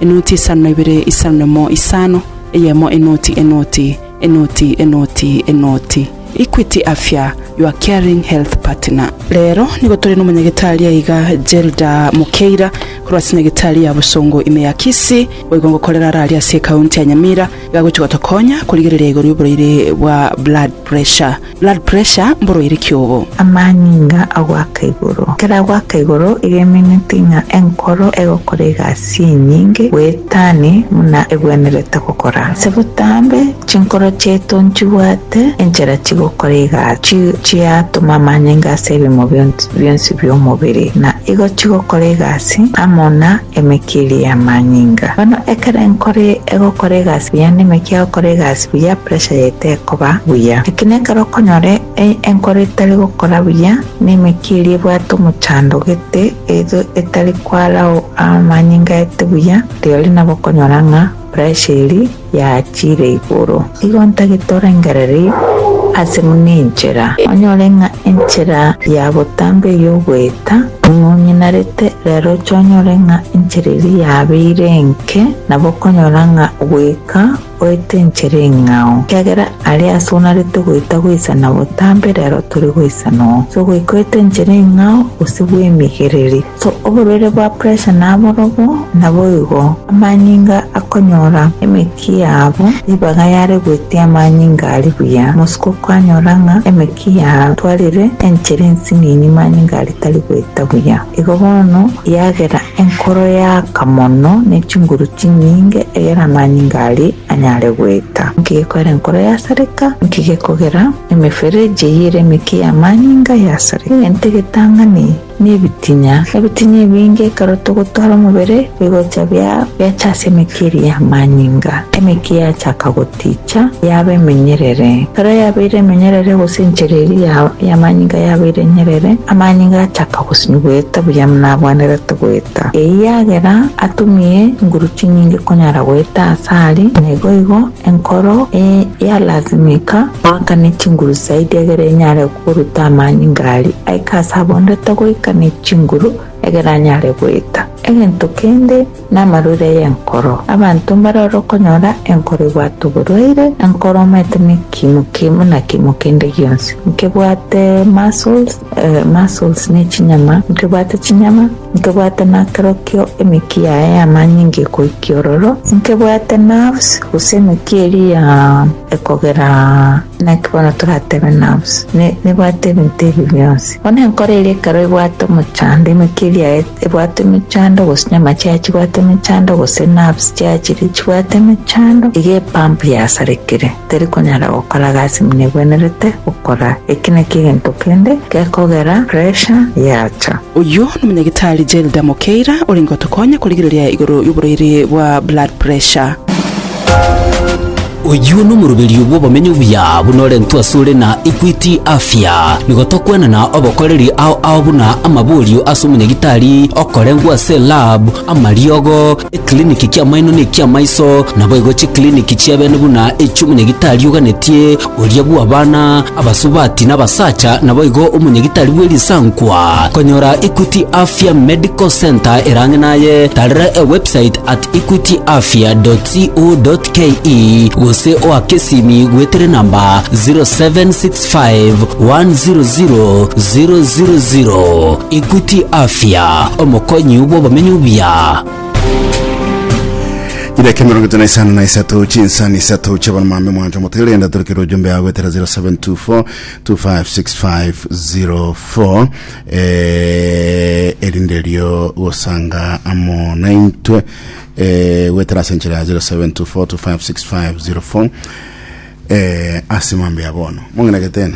Enoti isano na ibere, isano na imo, isano, eyemo enoti, enoti, enoti, enoti, enoti. Equity Afya, your caring health partner. Rero nigo tore n'omonyagitari aiga Gelda Mukeira korwa ase nyagitari ya Busongo ime ya Kisii boigo ngokorera are aria ase ekaunti ya Nyamira iga agochia gotokonya korigereria igoro y'oboraire bwa blood pressure. Blood pressure mboroire ki obo? Amanyinga a goaka igoro. Ekero agoaka igoro, iga emineti ng'a enkoro egokora egasi enyinge goetani buna egwenerete gokora. Ase botambe, chinkoro chiaito nchibwate enchera chigokora egasi chiatoma amanyinga ase ebimo bionsi bionsi bi'omobere, na igo chigokora egasi amo na emekia eria y'amanyinga. Bono ekero enkoro egokora egasi buya, nemekia egokora egasi. buya pressure yaye tekoba buya. Eki nekero okonyora enkoro etari gokora buya, na emekiri ebwate omochando gete, either etari kwarao amanyinga aete buya, rirorio nabo okonyora ng'a pressure eri yachire igoro. Igo ntagete orengereri ase buna enchera, onyore ng'a enchera ya botambe eye ogoeta buna onyinarete, rero oche onyore ng'a enchera eria yabeire enke, nabo okonyora ng'a goika. Oetenchera eng'ao, ekiagera aria ase onarete goeta goisana botambe rero tore goisana oo. So goika oetenchera eng'ao gose bwemigereri. So oborwaire bwa pressure naborobwo, naboigo amanyinga akonyora emeki yabo ribaga yare goetia amanyinga aria buya. Mosiko kwanyora ng'a emeki yatwarire enchera ensinini manyinga aria tari goeta buya. Igo bono yagera enkoro yaaka mono ne chinguru chinyinge, egera amanyinga aria anyare goeta. Nki gekogera enkoro yasareka? Nki gekogera emefereji eyio ere emeke y'amanyinga yasareka? Egento egetang'ani nebitinya. Ebitinya ebinge ekero togotwara omobere bigocha biacha ase emeke eria y'amanyinga. Emeke yachaka Ticha yaba emenyerere. Ekero yabeire emenyerere gose enchera eria y'amanyinga yabeire enyerere, amanyinga achaka gosimia goeta buya buna abwenerete goeta. Eyagera atumie nguru chinyinge konyara goeta ase aria, naigoigo enkoro eye yalasimika goakane chinguru zaidi egere enyare koruta amanyinga aria aike ase abwenerete goika ne chinguru egere anyare goeta. Egento kende. namarure y'enkoro. Abanto mbare ore okonyora enkoro ebwate oborwaire, enkoro omanyete nekimoki buna kimo kende gionsi, nkebwate muscles, ee, muscles nechinyama, nkebwate chinyama, nkebwate nakerokio emeki yaye y'amanyinga ekoikia ororo, nkebwate nerves, gose emeki eria ya. ekogera naki bono toratebe nabosa, ne nebwate ebinto ebi bionsi. Bono enkoro eria ekero ebwate omochando, emeke eria ebwate emechando, gose nyama chiaye chibwate emechando, gose nerves chiaye chiria chibwate emechando, iga epump yasarekire, teri konyara gokora gasi buna ebwenerete gokora. Eki nakio egento kende gekogera pressure yacha. Oyio nomonyagitari Gelda Mokeira orenge otokonya korigereria igoro yoborwaire bwa blood pressure. Oyio nomoroberio bw'obomenyo obuya buna orentwe asore na Equity Afya. Nigo tokwenana obokoreri ao ao buna amaborio ase omonyagitari okorengwa ase lab, amariogo, eclinic ki'amaino ne ki'amaiso, naboigo chiclinic chi'ebene buna echi'omonyagitari oganetie, Oria bw'abana abasubati n'abasacha naboigo omonyagitari bwe risankwa. Konyora Equity Afya Medical Centre erang'e naye, tarera ewebsite at equityafya.co.ke gose oake esimi gwetere namba 0765 100 000. Equity Afya, omokonyi bw'obomenyo buya. idaki mirongo itano na isano na isato chinsani isato chiabaromambe mwancho motigere genda torokere ojumbe yago etera 0724 256504 eh, erinde rio gosanga amo naintwe eh, gwetera ase enchera ya 0724 256504 eh, ase mambe ya bono mong'enagete ena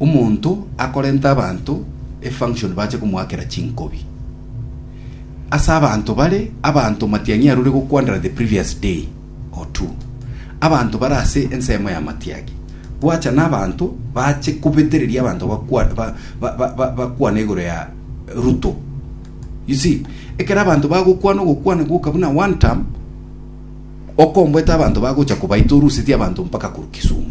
Omonto akorente abanto efunction bache komoakera chinkobi. Ase abanto bare, abanto matiang'i arure gokwanera the previous day or two. Abanto bare ase ensemo ya matiagi. Bwacha n'abanto bache kobetereria abanto bakwa- ba- ba- ba- ba- bakwane igoro ya Ruto. You see, ekero abanto bagokwana ogokwana gwoka buna one term, okomboete abanto bagocha kobaita oruseti abanto mpaka korwa Kisumu.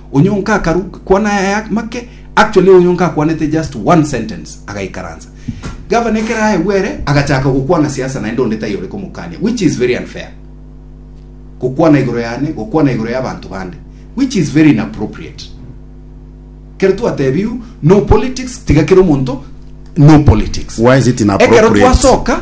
Onye onka akaru kwana aya make actually onye onka akwanete just one sentence agaikaransa gavana ekero aegwe ere agachaka gokwana siasa naende onde taiyo ore komokania which is very unfair gokwana igoro yane gokwana igoro ya bantu bande which is very inappropriate kero twatebiu no politics tiga kero omonto no politics Why is it ekero inappropriate? twasoka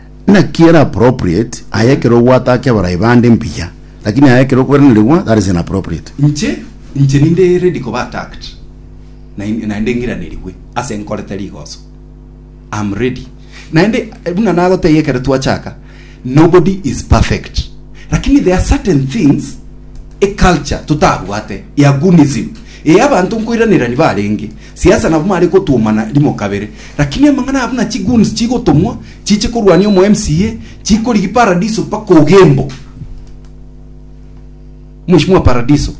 Naki ere appropriate aye ekero obwate ake abarai bande mbuya, lakini aye ekero okweranarigwa that is inappropriate. Inche inche ninde ready koba attacked nain- naende ng'iranerigwe ase nkorete rigoso. Am ready. Naende eh, buna nagotebia ekero twachaka, nobody is perfect. Lakini there are certain things eculture totabwate ya gunism eye abanto nkoiranerani barenge Siasa nabo mare kotwomana rimo kabere, lakini amang'ana abo na chigoons chigotomwa chiche korwania omo MCA chikorigi paradiso mpaka ogembo. Mheshimiwa paradiso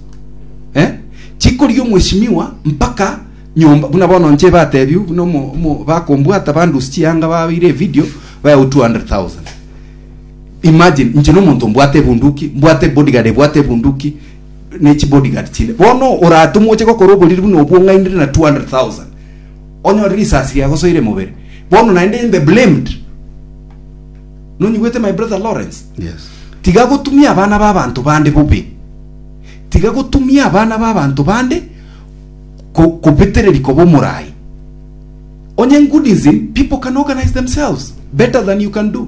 eh? chikorigi omheshimiwa mpaka nyomba buna bono nche batebiu buna omo, omo bakombwata bandus chianga babeire evideo baewu 200,000 imagine nche nomonto mbwate ebunduki mbwate bodyguard ebwate ebunduki ne chibodyguard chinde bono oratumwe oche gokora oboriri buna obwo ong'ainire na 200,000 onyore risasi riagosoire mobere bono naende in the blamed nonyigwete my brother Lawrence Yes. tiga gotumia abana b'abanto bande bobe tiga gotumia abana b'abanto bande ko- kobetereri koba omorai onye goodism people can organize themselves better than you can do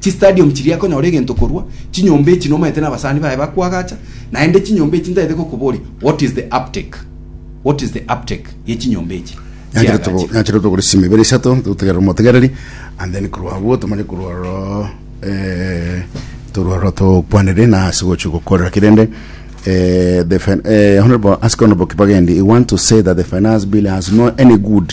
Chistadium chiria akonyora egento korwa chinyomba echi nomaete nabasani baye bakwagacha naende chinyomba echi ntaete gokoboria what is the uptake what is the uptake ye chinyomba echi Nyanchire togo- chiagachire. nyanchire togore simi ibere isato totegerere omotegereri and then korwa abwo tomanye korwa ororo eh, torwa ororo tokwanere na ase gochia gokorera ki rende eh, the fin- eh, honorable ask honorable kibagendi you want to say that the finance bill has no any good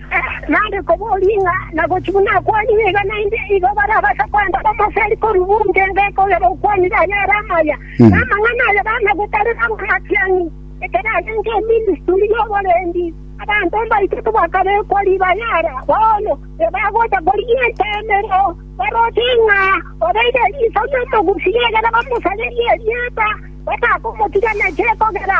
Naende koboria ng'a nagochi buna akwani nigo naende igo barabase kwenda bamoseri korwa bunte enga kogera okwanire aye ere amaya, na amang'ana aye bana gotarera b'amatiang'i, ekero agenta eministuri y'oborendi. Abanto mbaito tibakabekwa riba yara, bono ebagocha korigia eteemero, baroche ng'a obeire riiso ri'omogusi egere bamosarerie erieta, batakomotiga nache kogera.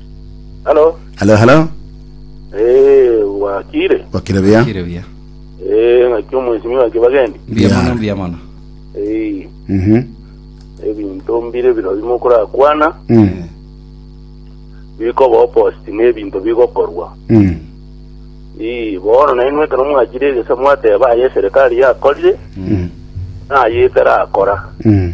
Halo. Halo, halo. Eh, wakire. Wakire bia. Kire buya. Eh, ngaki omwesimiwa kibagendi. Mbuya Yeah. mono, mbuya mono. Eh, Mhm. ebinto mbire biro bimo kurakwana Mm. bikoba opposite n'ebinto bigokorwa. Mm. Eh, bono naye nwekero mwachire egesa mwateba aye serikali yakorire Mm. naye etarakora. Mm.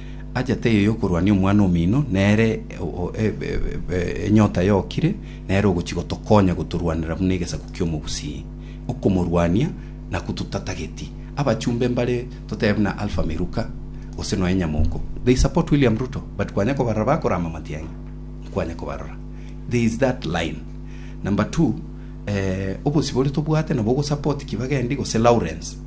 Achete eyo y'okorwania omwana omino, nere enyota yokire, nere ogochia gotokonya gotorwanera buna egesaku ki'omobusii. Okomorwania nakwo totatageti. Abachumbe mbare totebe buna Alpha Miluka gose nonya Nyamoko. They support William Ruto but kwanya kobarora bakorama matiang'i, nkwanya kobarora. There is that line. Number two, eh, obosibore tobwate nabo ogosupport Kibagendi gose Lawrence.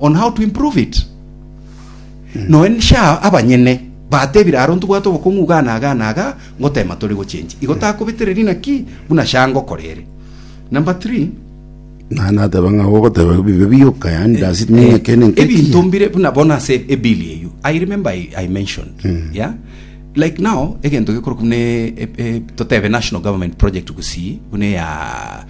on how to improve it noe sha abanyene batebire aro ntobwate obokong'u iga na iga na iga ngotema tore gochenji igo takobetereri naki buna sha ngokora ere number 3 Na nateba ng'a ogoteba bibe bioka yani does it mean ekene nke ebinto mbire buna bona ase ebill eyo i remember i, I mentioned yeah like now egento gekorokwa buna e- e- e- totebe national government project gusii buna ya